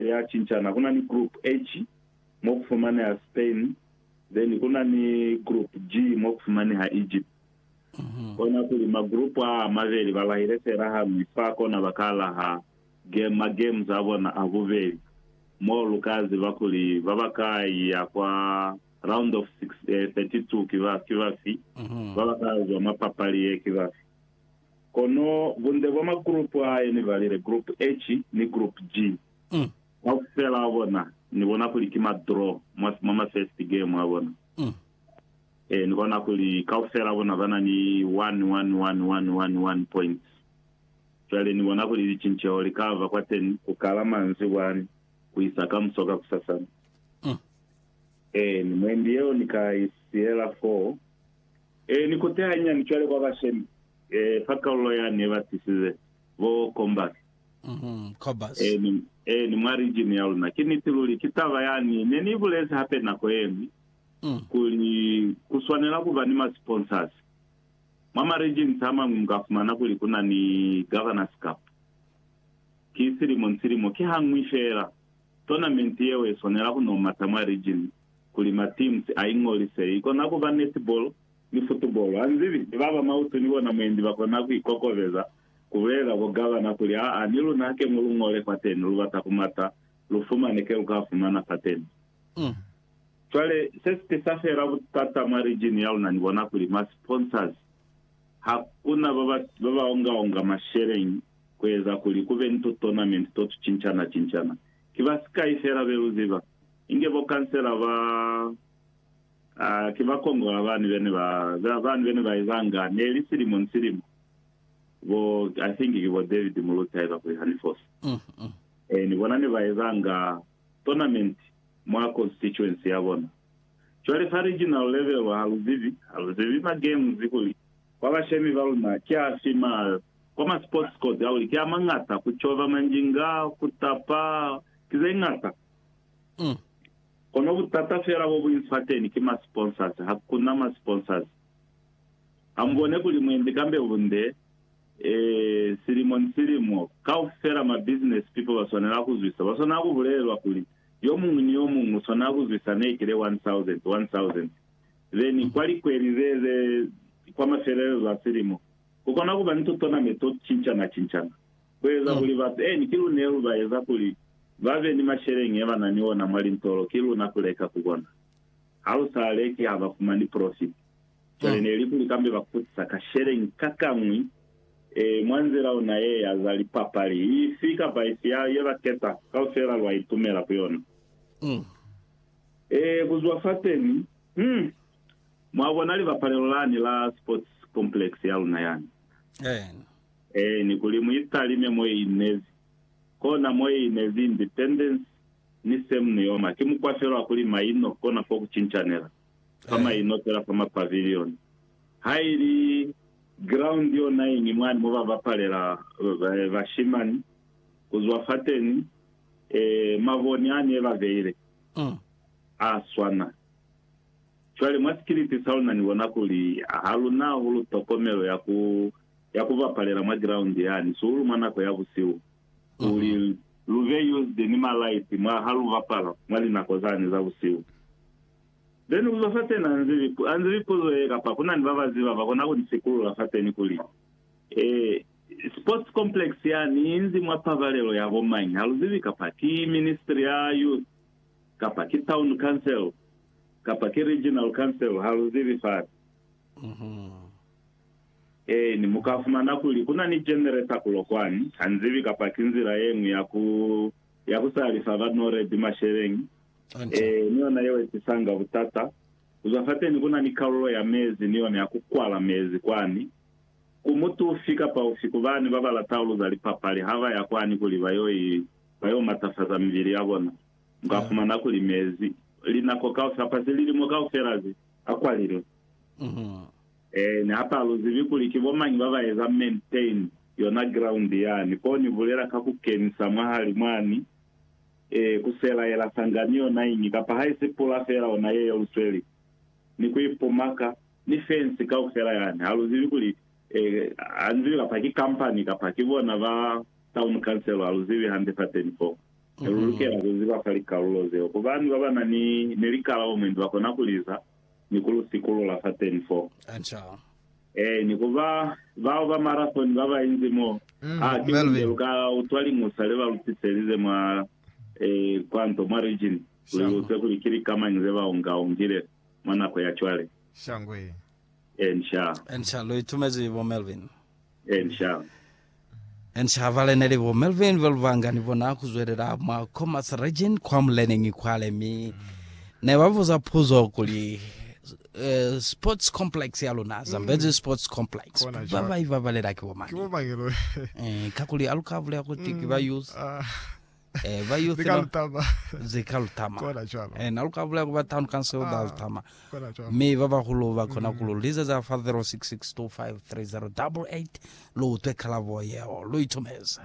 ya cincana kuna ni group H mo ku fumaneha Spain then kuna ni group G mo ku fumaneha Egypt. Kona kuli ma group a a mabeli ba lahile fela hañwi fa kona ba ka laha game ma games a bona a bubeli mo lu ka ziba kuli ba ba ka iya kwa round of 32 ki bafi ba ba ka zwa mwa papali ye ki bafi. Kono bunde bwa magrupu a ye ni balile, Grupu H ni Grupu G, kaufela a bona ni bona kuli ki ma draw mwa ma first game a bona. Ee, ni bona kuli kaufela a bona ba na ni one, one, one, one, one, one points. Cwale ni bona kuli licinceho li ka ba kwateni ku kala manzibwani ku isa kamuso kakusasana. Ee, ni mwendi yeo ni ka i siyela foo. Ee, ni kute hanyani cwale kwa bashemi, ee, fa kalulo ya ne ba tisize, bo Combas. Mm-hmm, Combas. Ee, ni, ee, ni mwa region ya luna. Ki niti luli. Ki taba yani ne ni ibulezi hape nako yeñwi, Mm. kuli ku swanela kuba ni ma sponsors. Mwa ma regions amañwi muka fumana kuli kuna ni Governors Cup. Ki silimo ni silimo, ki hañwi feela, tournament yeo ye swanela kuno mata mwa region. kuli mateams a ingolise, ikona kuba netball ni football. Ha nzibi ni baba mautu ni bona mwendi bakona ku ikokobeza kubulelela bo gabana kuli, aa ni luna ke mulu ngole fateni, lubata kumata, lu fumane ke luka fumana fateni. Cwale se si tisa fela butata mwa region ya luna, ni bona kuli ma sponsors ha kuna baba baba onga onga masheleñi kueza kuli kube ni tu tournament to tu cinchana cinchana. Ki basikai fela be lu ziba. Inge bo kansela ba a ki ba kongola bani bene ba za bani bene ba ezanga neli silimo ni silimo bo I think ki bo David Muluzi haiba kuli hani fosi e ni bona ne ba ezanga tournament mwa constituency ya bona cwale fa regional level ha lu zibi ha lu zibi ma games kuli kwa bashemi ba luna ki afi ma kwa ma sports court a kuli ki a mangata ku cova manjinga ku tapa ki ze ngata Umm. Kono butata fela bo buñi fateni ki ma sponsors, ha ku na ma sponsors. Ha mu bone kuli mwendi kambe bunde, ee, silimo ni silimo, kaufela ma business people ba swanela ku zwisa, ba swanela ku bulelelwa kuli, yo muñwi ni yo muñwi u swanela ku zwisa ne kile 1,000, 1,000. Then kwa likweli ze, ze, kwa mafelelezo a silimo, ku kona ku ba ni to tonament to ku cincana-cincana. ku eza kuli bapeni ki lune lu ba eza kuli ba be ni masheleñi ye ba na ni ona mwa lintolo ki luna ku leka ku bona. Ha lu sa leki ha ba fumani profiti. Cwale ne li kuli kambe ba kutisa ka sheleñi ka kañwi ee mwa nzila ona ye ya za lipapali ifi kapa ifi ya ye ba keta, kaufela lwa itumela ku yona. Ee, ku zwa fateni, hum, mwa bona libapalelo lani la sports complex ya luna yani. Ee, ni kuli mu italime mwe i inezi, kona mwe i inezi independence ni same ni yoma. Ki mukwa fela wa kuli maino kona fo ku cincanela, fa maino fela fa ma pavilion. Ha i li ground yonañi mwani mo ba bapalela bashimani, ku zwa fateni, ee, maboni ani e ba beile, a swana. Cwale mwa sikiliti sa luna ni bona kuli ha luna hahulu tokomelo ya ku ya ku bapalela mwa giraundi yani sihulu mwa nako ya busihu kuli lu be used ni malaiti mwa ha lu bapala mwa linako zani za busihu. Then uzwa fateni anzi bipu, anzi bipuzo ye kapa kuna ni baba ziba ba kona kuni sikulula fateni kuli, Eh, sports complex yani inzi mwa pabalelo ya bo mañi? Ha lu zibi kapa ki ministry ya youth, kapa ki town council, kapa ki regional council, ha lu zibi fani. Eeni, mu ka fumana kuli ku na ni jenere sa kulo kwani, ha nzibi kapa ki nzila ye ñwi ya ku, ya ku salifa ba Noredi masheleñi. Eeni, ni yona yeo i tisanga butata. Ku zwa fateni ku na ni kalulo ya mezi ni yona ya ku kwala mezi kwani. Ku mutu ufi kapa ufi ku bani ba ba latauluza lipapali ha ba ya kwani kuli ba yo i, ba yo matafaza mibili ya bona, mu ka fumana kuli mezi, linako kaufela, kapa zililimo kaufela ze, a kwalilwe. Ee, ni hapa aluzibi kuli ki bomañi baba eza maintain yona ground yani, ko ni bulela ka ku kenisa mwahali mwani, ee, ku sela yela sangani yona iñi, kapa haisi pula fela ona ye yelusweli, ni ku ipumaka, ni fence kaufela yani, haluzibi kuli, ee, hanzibi kapa ki company kapa ki bona ba town council, haluzibi hande fateni foo. Lulukela kuziba fa likalulo zeo, kuba ni babana ni, ni likalabo mwendi bakona kuliza, ni ku lu sikulula fa teni fo. Ee, ni ku ba bao ba marathoni ba ba inzi mo. Ha ki bunde lu ka utwa liñusa le ba lu tiselize mwa, ee, kwa nto, mwa Region, kuli lu utwe kuli ki lika mañi ze ba unga-ungile mwa nako ya cwale. Ee, nxaa. Lu itumezi, bo Melvin? Ensham. Enshava lene li bo Melvin ba lubanga ni bona ku zwelela mwa Khomas Region kwa muleneñi kwale mi ne ba buza puzo kuli eh, sports complex ya luna mm. Zambezi mm. sports complex ba ba ibabalela ki bomani eh, kakuli aluka bulela kuti mm. ki ba mm. youth ah. eh, ba youth Lika lutama. zika lutama Kona cwalo. eh, nalu ka bulaya ku ba town council elder Ah. lutama Kona cwalo. mme ba bahulu ba kona ku lu liza za fa 0662530888 lu utwe kalabo yeo lu itumeza